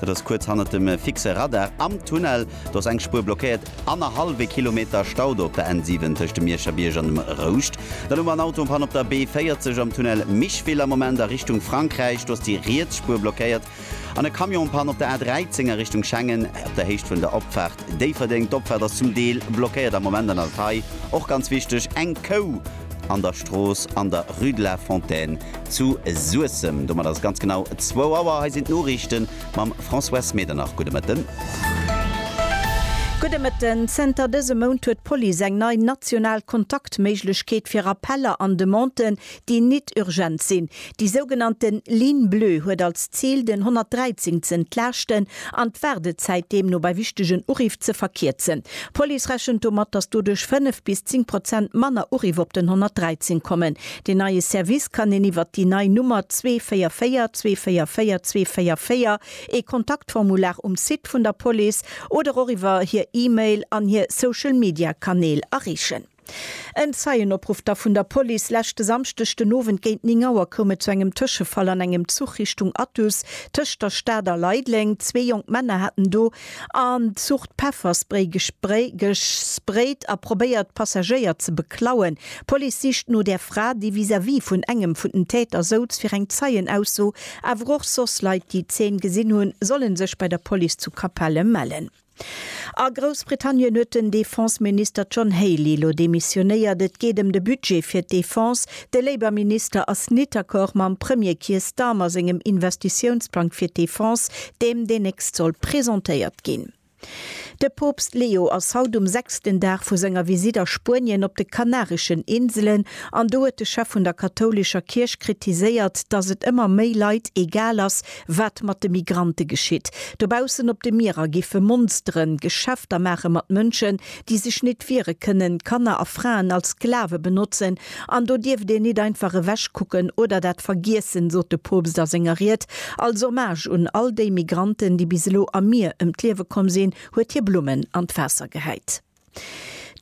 Dat ass kuerz hannert dem fixe Radar am Tunnel. Do ass eng Spuer blockéiert. Annerhallwe Kilometer Stau do op der N7 tëscht dem Mierscher Bierg an dem Rouscht. Dann hu mer en Autopanne op der B40 am Tunnel Micheville am Moment a Richtung Frankräich. Do ass déi riets Spuer blockéiert. An e Camion panne op der A13 a Richtung Schengen op der Héicht vun der Opfaart Déifferdeng. D'Opfaart ass zum Deel blockéiert am Moment. An alt hei och ganz wichteg, eng Kou an der Strooss an der Rue de la Fontaine zu Suessem. Domat ass et ganz genau 2 Auer. Hei sinn d'Noriichte mam Françoise Medernach. Gudde Mëtten. Gudde Mëtten. Zënter dësem Mount huet d'Police eng nei national Kontaktméiglechkeet fir Appeller an Demanden, déi nit urgent sinn. Déi sougenannte Ligne bleue huet als Zil, den 113 ze entlaaschten an d'Waardezäit deemno bei wichtegen Uriff ze verkierzen. D'Police rechent domat, datt doduerch 5 bis 10 Prozent manner Uriff op den 113 kommen. Deen neie Service kann een iwwert déi nei Nummer 244 244 244, ee Kontaktformular um Site vun der Police oder och iwwer hir E-Mail an hir Social-Media-Kanäl erreechen. En Zeienopruff da vun der Police, Leschte Samschdeg den Owend géint 9 Auer koum et zu engem Tëschefall an engem Zuch Richtung Athus tëscht der Stad a Leideleng. Zwee jonk Männer haten do an Zucht Pefferspray gesprayt a probéiert d'Passagéier ze beklauen. D'Police sicht no der Fra, déi vis-à-vis vun engem vun den Täter souz. Fir eng Zeienausso, awer och soss Leit, déi d'Zeen gesinn hunn, solle sech bei der Police zu Capellen mellen. A Groussbritannien huet den Defense-Minister John Healey elo demissionéiert. Et geet ëm de Budget fir d'Defense. De Labour-Minister ass nit accord mam Premier Keir Starmer sengem Investitiounsplang fir d'Defense, deem dénächst soll presentéiert ginn. De Poopst Leo ass haut um sechsten Dag vu senger Visitt a Spuenien op de Kanareschen Inselen an do huet de Chef vun der kathoulescher Kierch kritiséiert, datt et ëmmer méi Leit egal ass, Wat mat de Migrante geschitt dobaussen op de Mierer, giffe Monsteren Geschäfter maache mat Mënschen, déi sech nit wiere kënnen, Kanner a Fraen als Sklave benotzen, an do dierft een nit einfach ewech kucken oder dat vergiessen, sot de Poopst a senger Ried. Als Hommage un all déi Migranten, déi bis elo am Mier ëm d'Liewe komm sinn, huet hie Blummen an d'Waasser gehäit.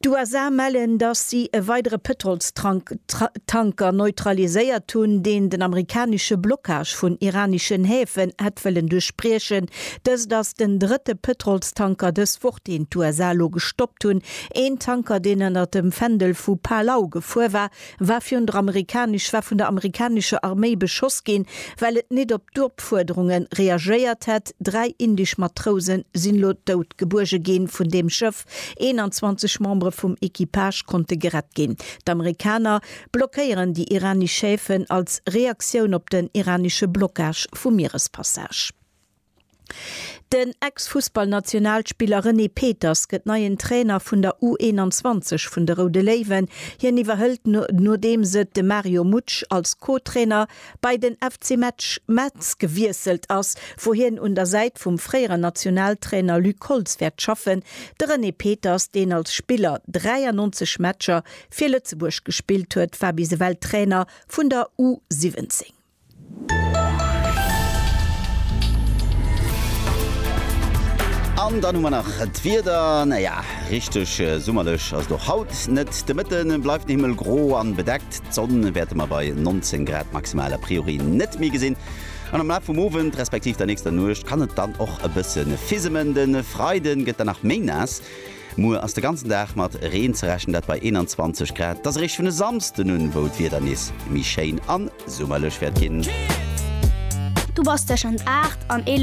D'USA mellen, dass si e weidere Pëtrolstanker neutraliséiert hunn, deen den amerikanesche Blockage vun iraneschen Häfen hätt wëllen duerchbriechen. Dëst ass den drëtte Pëtrolstanker dës Woch, deen d'USA elo gestoppt hunn. Een Tanker, deen ënner dem Fändel vu Palau gefuer war, War virun der amerikanisch war vun der amerikanischer Arméi beschoss ginn, well et nit op d'Opfuerderunge reagéiert hätt. Dräi indisch Matrouse sinn lo dout gebuerge gi vun deem Schëff. 21 Membere vum Equipage konnte gerett ginn. D'Amerikaner blockéieren déi iranisch Häfen als Reaktioun op den iranische Blockage vum Mierespassage. Den Ex-Fussballnationalspiller René Peters gëtt neien Trainer vun der U21 vun de Roude Léiwen. Hien iwwerhëlt nodeems et de Mario Mutsch als Co-Trainer bei den FC Metz gewiesselt ass, wou hien un der Säit vum fréieren Nationaltrainer Luc Holtz wäert schaffen. De René Peters, deen als Spiller 93 Matcher fir Lëtzebuerg gespillt huet, war bis ewell Trainer vun der U17. An dann hu mer nach d'Wieder. Naja, richteg summerlech ass et och haut net. De Mëtte bleift de Himmel gro a bedeckt. D'Sonn wäerte mer bei 19 Grad maximal a priori net méi gesinn. An am Laf vum Owend, respektiv der nächster Nuecht kann et dann och e bësse fisemen. De Freide gëtt dann nach méi naass. Muer ass de ganzen Dag mat Reen ze rechnen, dat bei 21 Grad. Et ass eréischt vun e Samsden un, wou d'Wieder nees méi schéin a summerlech wäert ginn. Du bass teschend 8 an 11